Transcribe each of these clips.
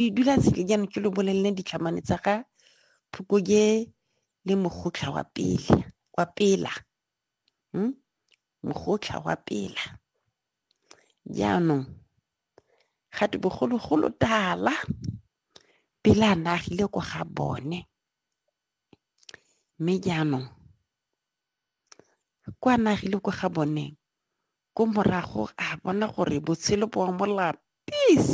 Ke dula tshele jaanong ke lo bolelele ditlhamane tsa ga Phukoje le Mogotlha wa pele wa pela hmm? Mogotlha wa pela jaanong ga te bogologolo tala pele a nagile ko ga bone mme jaanong Kwa nagile ko ga bone ko morago a bona gore botshelo bo a mo lapis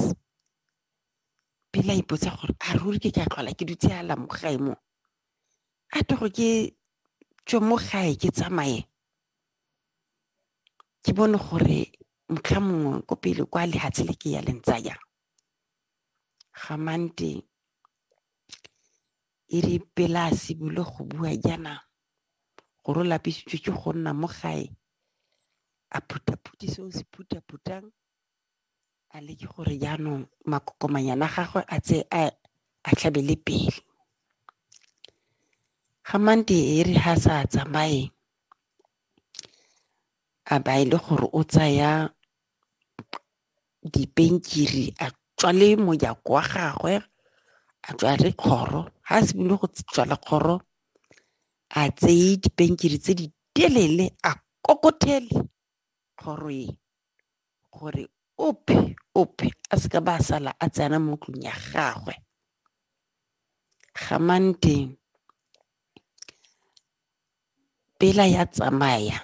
pele a ipotsa gore a ruri ke ka tlhola ke dutse ala mo gae mo a to go ke tswe mo gae ke tsamaye ke bone gore motlha mongwe ko pele kwa lehatshe le ke ya lentsaya gamante E re pele a simolole go bua jaana, gore o lapisitswe ke go nna mo gae, a phuthaphuthe se o se phuthaphutang, a leke gore jaanong makokomanyana a gagwe a tse a a tlhabele pele. Ga mante e re ha sa tsamaye, a ba e le gore o tsaya dipenkiri a tswale mojako wa gagwe a tswale kgoro ga a simolole go tswala kgoro a tseye dipenkiri tse di telele a kokothele kgoro e gore ope ope a seka ba sala a tsena mo tlong ya gagwe gamanteng pela ya tsamaya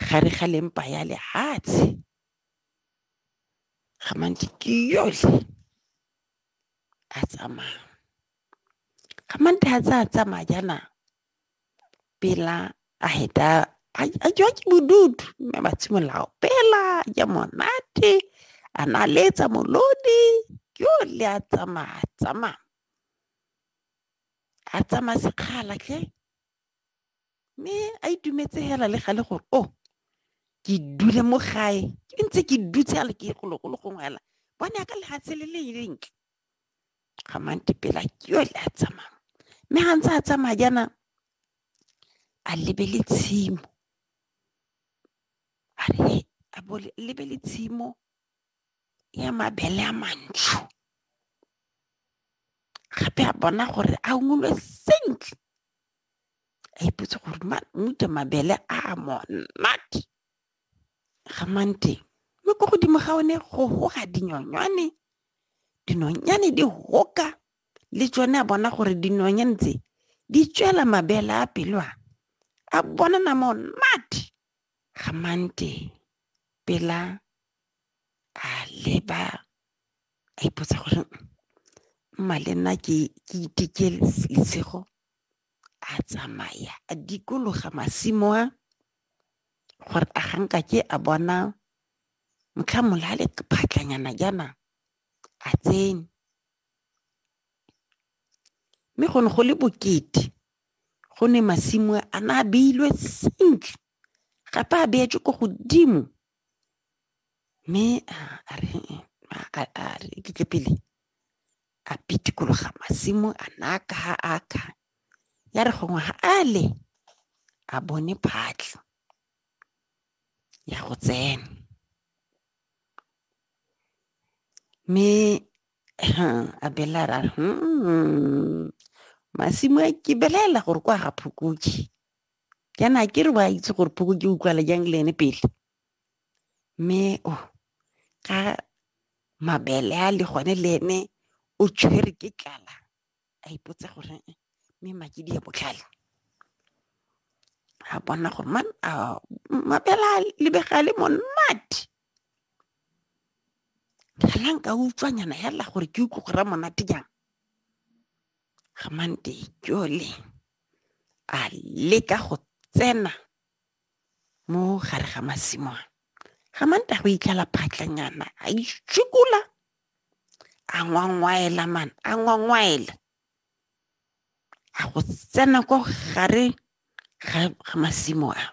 gare ga lempa ya lehatshe ga mantsi ke yotlhe a tsamaya ga mantsi a tsa tsamaya jaana pela a heta a jwa ke bodutu mme ba tshimolola opela ja monate a na letsa molodi ke yotlhe a tsamaya tsamaya a tsamaya sekgala ke mme a itumetse hela le gale gore o oh, ke dule mo gae ke ntse ke dutse a le ke gologolo gongwe hela bone ka lefatshe le le lentle ga mante pela ke yo le a tsamaya mme ga ntse a tsamaya jaana a lebele tshimo a re a lebele tshimo ya mabele a mantsho gape a bona gore a ungolwe sentle a ipotse gore mute mabele a monate ga mang teng mme ko godimo ga one go goga dinyonyane dinonyane di hoka le tsone a bona gore dinonyane tse di tswela mabele a pelo a a bonana monate ga mang teng pela a leba a ipotsa gore mma le nna ke ke iteke lesego a tsamaya a dikologa masimo a gore a ganka ke a bona motlha molale phatlanyana jaana a tsene mme go ne go le bokete go ne masimo a na a beilwe sentle gape a beetswe ko godimo mme a re a re iketle pele a pitikologa masimo a naka ha a ka ya re gongwe ga a le a bone phatlho ya go tsena mme a bela ra hmm, masimo a ke belela gore kwa ga phokotse jaana a ke re wa itse gore phoko ke utlwala jang le ene pele mme o ka mabele a le gone le ene o tshwere ke tlala a ipotsa gore eh, mme makedi ya botlhale a bona gore man mabele a lebega le monate fela nka utswanyana fela gore ke utlwe go ra monate jang Gamante jole a leka go tsena mo gare ga masimo a. Gamante a go itlhala phatlanyana a itshukula a ngwangwaela man a ngwangwaela a go tsena ko gare ga masimo a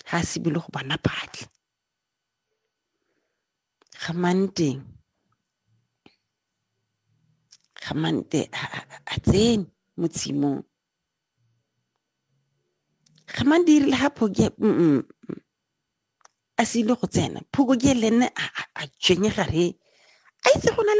ga a sebile go bona phatlha Gamante Gamante a tsene mo tshimong Gamante irile ha phoke a sile go tsena phoko ke le nne a tshwenye gare a itse go na